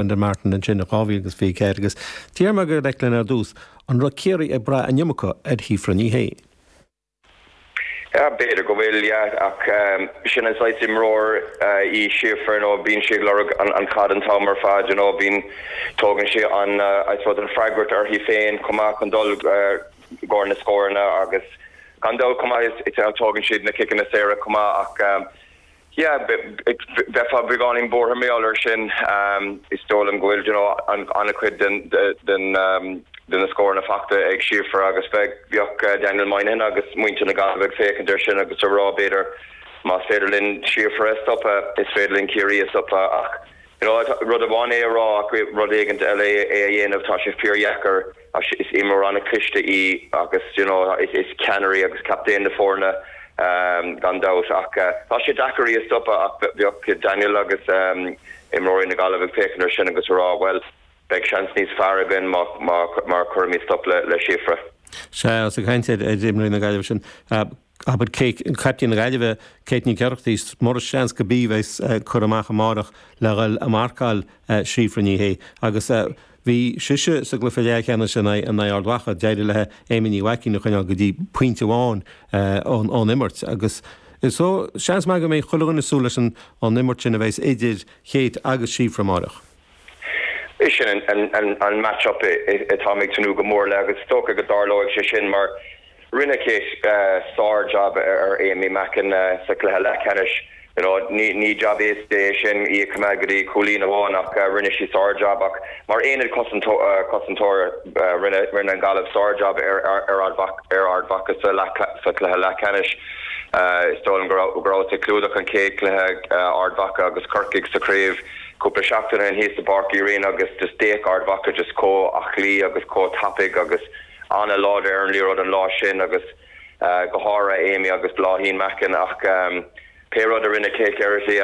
Brendan Martin ansin i 2024 agus d'fhiafraigh mé de Declan ar dtús an raibh Ciarraí ag brath in iomarca ar Shíofra Ní Shé. B'fhéidir go bhfuil, yeah, ach sin an saghas imreoir í Síofra, you know, bíonn sí ag lorg an chaid an t-am ar fad, you know, bíonn, tógann sí an, I suppose, an freagracht uirthi féin chomh maith chun dul i gcóir na scóranna agus gan dabht chomh maith is tógann siad na ciceanna saora chomh maith ach, Yeah, bheifeá beagáinín buartha mar gheall ar sin. Is dóigh liom go bhfuil, you know, an-chuid de na scóranna faighte ag Síofra agus bheadh Daniel Moynihan agus muintir na Gaillimhe ag féachaint ar sin agus a rá b'fhéidir más féidir linn Síofra a stopadh is féidir linn Ciarraí a stopadh ach, you know, rud amháin é a rá ach rud éigint eile é a dhéanamh. Tá sé fíordheacair. Is imreoir an-chliste í agus you know is ceannaire í agus captaen na foirne gan dabht ach tá sé deacair í a stopadh ach bheadh Daniel agus imreoirí na Gaillimhe ag féachaint ar sin agus a rá bhuel beidh seans níos fearr againn má má cuirimid stop le Síofra. Sea, is ag caint ar imreoirí na Gaillimhe ansin. Abair caiptín na Gaillimhe, Kate Nic Oireachtaigh, is mór an seans gurb í a bheas curtha amach amáireach le dhoil ag marcáil Síofra Ní Shé agus bhí sise sa gcluiche leathcheannais in aghaidh Ard Mhacha. D'éirigh léi Aimee Ní Mhaicín a choinneáil go dtí pointe amháin ón imirt agus so seans maith go mbeidh chuile dhuine ag súil leis an imirt sin a bheas idir Kate agus Síofra amáireach. Is sin an match up atáim ag tnúth go mór le agus is dócha go dtarlóidh sé sin mar rinne Kate sár jab ar Aimee Mackin sa chluiche leathcheannais. You know ní jab éasca é sin í a coimeád go dtí cúilín amháin ach rinne sí sár jab ach mar aonad cosantóra rinne an Gaillimh sár jab ar Ard Mhacha sa chluiche leathcheannais. Is dóigh liom go rabhas ag clúdach an chéad cluiche Ard Mhacha agus Corcaigh sa chraobh. Cúpla seachtain ó shin thíos i bPáirc Uí Rinn agus just d'fhéach Ard Mhacha just comh aclaí agus comh tapaidh agus an-láidir ar an liathróid an lá sin agus go háirithe Aimee agus Bláithín Mackin ach pé rud a rinne Kate Geraghty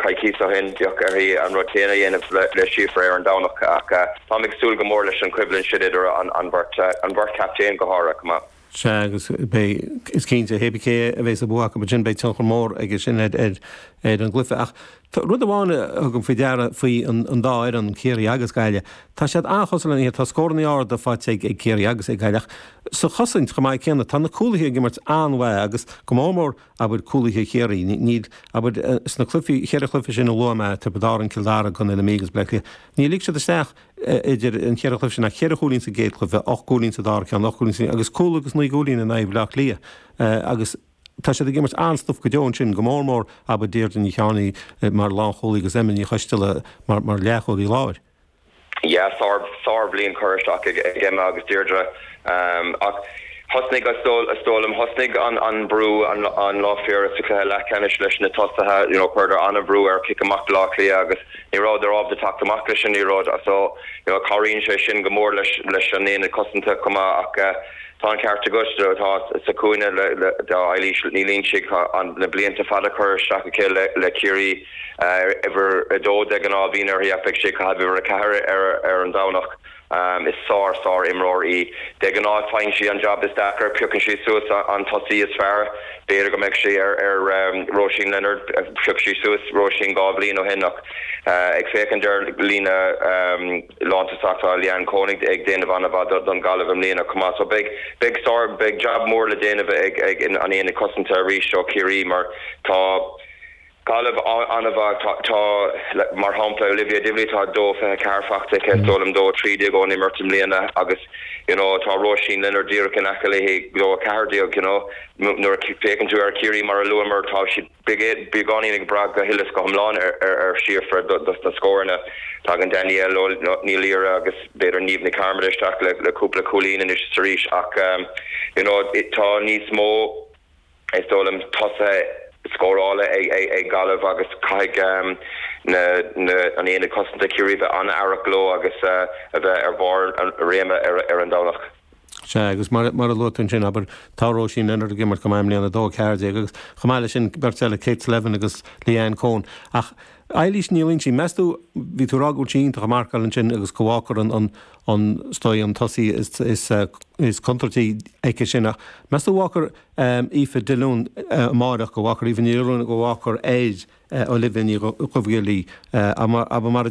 coicís ó shin beidh uirthi an rud céanna a dhéanamh le Síofra ar an Domhnach ach táim ag súil go mór leis an choimhlint sin idir an bheirt captaen go háirithe. Sea, agus beidh, is cinnte, pé cé a bheas an bua acu ansin, beidh tionchar mór aige sin ar an gcluiche. Ach tá rud amháin a thugaim faoi deara faoi an dá fhoireann, Ciarraí agus Gaillimh, tá siad an-chosúil lena chéile. Tá scórannaí arda faighte ag Ciarraí agus ag Gaillimh ach sa chosaint chomh maith céanna. Tá na cúlaithe ag imirt an-mhaith agus go mór mór, abair, cúlaithe Chiarraí. Níl, abair, sna cluichí, cheithre chluiche sin a luaigh mé, Tiobraid Árann, Cill Dara, Contae na Mí agus Baile Átha Cliath, níor lig siad isteach, idir an cheithre chluiche sin ach ceithre chúilín sa gcéad chluiche, ocht gcúilín sa dara ceann, ocht gcúilín sa agus cúl agus naoi gcúilín in aghaidh Bhleá Cliath agus tá siad ag imirt an-stuif go deo ansin, go mór mór, abair, Deirdre Ní Chearnaigh mar lánchúlaí agus Emma Ní Choisteala mar leathchúlaí láir. Yeah, sár, sár bhliain cur isteach ag Emma agus Deirdre. Ach thosnaigh, is dóigh liom, thosnaigh an brú an lá fé dheireadh sa chluiche leathcheannais leis na tosaithe. You know, chuireadar an-bhrú ar chic amach Bhleá Cliath agus ní rabhadar ábalta teacht amach leis an liathróid. So, you know, cabhraíonn sé sin go mór leis an aonad cosanta chomh maith. Ach tá an ceart agat, tá sa chúinne d'Éilís Ní Loingsigh na blianta fada cur isteach aici le Ciarraí. Uimhir a dó de ghnáth a bhíonn uirthi ach beidh sí ag caitheamh uimhir a ceathair ar an Domhnach. Is sár sár imreoir í. De ghnáth faigheann sí an jab is deacair, piocann sí suas an tosaí is fearr. B'fhéidir go mbeadh sí ar Róisín Leonard, phioc sí suas Róisín dhá bhliain ó shin ach ag féachaint ar líne lántosach tá Leanne Coen ag déanamh ana mhaith don Gaillimh i mbliana chomh maith so beidh sár, beidh jab mór le déanamh ag an aonad cosanta arís ó Chiarraí mar tá. Gaillimh an-mhaith. Tá, tá, mar shampla, Olivia Divilly, atá 2, 24 faighte aici, is dóigh liom, 2, 13 ón imirt i mbliana agus, you know, tá Róisín Leonard díreach in aice léi, 2, 14, you know. Nuair a fhéachann tú ar Chiarraí, mar a luamar, tá siad beagáinín ag brath go huile is go hiomlán ar, ar, ar Shíofra dos na scóranna. Tagann Danielle Ó, no, Ní Laoire agus b'fhéidir Niamh Ní Chearmada isteach le, le cúpla cúilín anois is arís ach, you know, tá níos mó, Is dóigh liom tosaithe scórála ag Gaillimh agus caithfidh an aonad cosanta Ciarraí a bheith an-aireach leo agus a bheith ar bharr a réime ar an Domhnach. Sea, agus mar a luaigh tú ansin, abair, tá Róisín Leonard ag imirt go maith i mbliana, 2, 14, agus chomh maith leis sin beirt eile, Kate Slevin agus Leanne Coen. Ach Éilís Ní Loingsigh, meas tú, bhí tú ag rá go bhfuil sí iontach ag marcáil ansin agus go bhfágfar an, is dóigh, an tosaí is contúirtí aici sin ach meas tú an bhfágfar, Aoife Dilliúin amáireach go bhfágfar Aoibhinn Ní Ruanaidh go bhfágfar ar Olivia Ní Dhuibhghiolla í. Mar a